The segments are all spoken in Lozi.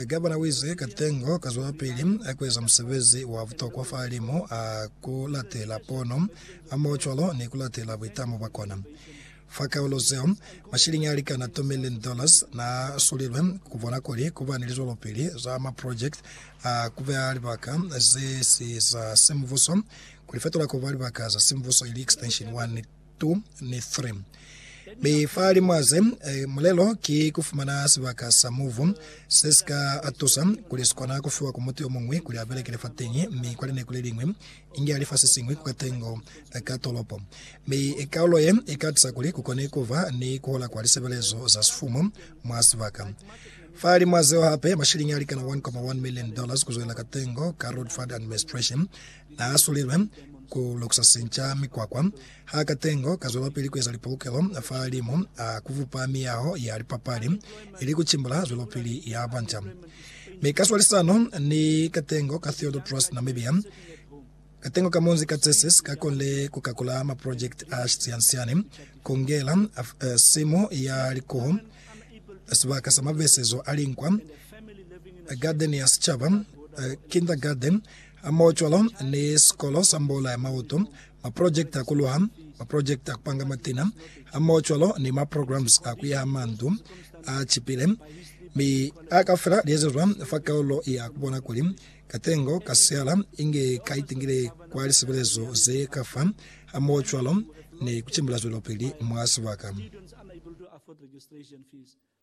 Gavana u ize, Katengo ka zwelapili ku eza musebezi wa butokwa fahalimu a ku latela pono hamoho cwalo ni ku latela buitamo bwa kona. Fa kaulo zeo, mashilingi a likana tu million dollars na sulilwe ku bona kuli ku ba ni lizwelopili za maprojekiti a ku beha libaka ze si za simubuso ku li fetola ku ba libaka za simubuso ili extension 1. 2 ni 3. Mi fa li mwaze, mulelo ki ku fumana sibaka sa muvu se si ka tusa kuli si kona ku fiwa ku mutu yo muñwi kuli a belekele fateñi, mi kwa lineku le liñwi inge a li fa se siñwi ku katengo ka tolopo. Mi kaulo ye i ka tusa kuli ku kone ku ba ni ku hola kwa lisebelezo za sifumu mwa sibaka. Fa li mwaze yo hape, mashiliñi a likana 1.1 million dollars ku zwelela katengo ka Roadfund Administration naasulilwe ku lukusa sinca mikwakwa. Ha katengo kazwelapili kueza lipolokelo fa limu a kubupa miyaho ya lipapali ili kucimbula zwelopili ya banca. Mi kaswalisano ni katengo ka Theodore Trust Namibia, katengo ka munzi ka Tsesis kakonile kukakula maprojekiti a sisiansiani, kungela simu ya likuhu, sibaka sa mavesezo a linkwa, gadeni ya sicaba, kindergarten, Amocwalo ni sikolo sa mbola ya mautu, maprojekiti a kuluha, maprojekiti a kupanga matina, amocwalo ni maprograms a kuyaha mandu a cipile, mi a kafela liezezwa fa kaulo ya kubona kuli katengo ka siala inge ka itingile kwa lisebelezo ze ka fa, amocwalo ni kucimbila zwelopili mwa sibaka.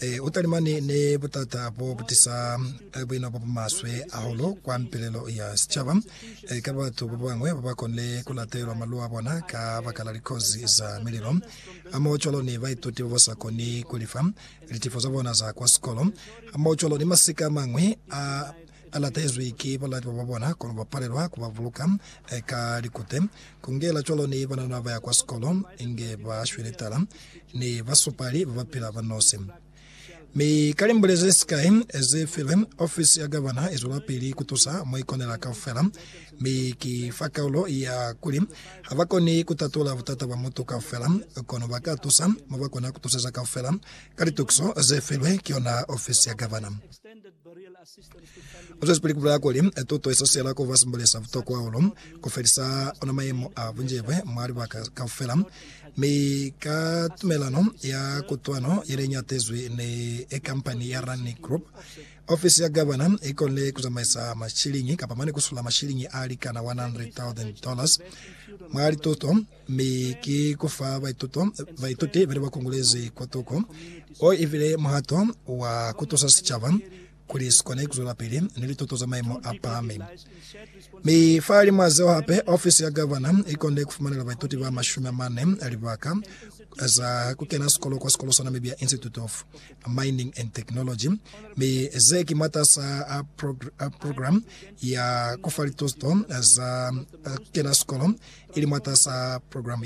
E, u talimani ni butata bo butisa buino bo bumaswe ahulu kwa mpilelo ya sicaba, e, ka batu ba bañwi ba ba konile ku latelwa malu a bona ka baka la likozi za mililo hamohocwalo ni baituti ba ba sa koni ku lifa litifo za bona za kwa sikolo, hamohocwalo ni masika a mañwi a a latezwi ki balati baba bona, kono ba palelwa ku ba buluka ka likute. Ku ingela cwalo ni banana ba ya kwa sikolo, inge ba shwile tala ni basupali ba ba pila ba nosi. Mi ka limbule ze sikai ze filwe, ofisi ya gavana i zwelapili ku tusa mo i konela kaufela. Mi ki fa kaulo ya kuli, ha ba koni ku tatula butata bwa mutu kaufela, kono ba ka tusa mo ba kona ku tuseza kaufela ka litukiso ze filwe ki yona ofisi ya gavana. U zwezipili ku bulela kuli, Tuto ye sasiyela ku ba simboli sa butokwa hahulu ku felisa ona mayemo a bunjebwe mwa libaka kaufela, mi ka tumelano ya kutwano ye ne i ñatezwi ni kampani ya Rani Group, ofisi ya gavana i konile ku zamaisa mashiliñi kapa mane ku sula mashiliñi a likana 100,000 dollars mwa lituto. Mi ki ku fa baituto, baituti bane ba kongolezi kwa toko. O i bile muhato wa ku tusa sicaba kuli si kone ku zwelapili ni lituto za maimo a pahami. Mi fahalimw'a zeo hape, ofisi ya gavana i konde ku fumanela baituti ba mashumi a mane libaka za ku kena sikolo kwa sikolo sa Namibia Institute of Mining and Technology, mi ze ki mwatas'a program ya ku fa lituto za kena sikolo ili mwatas'a program ye.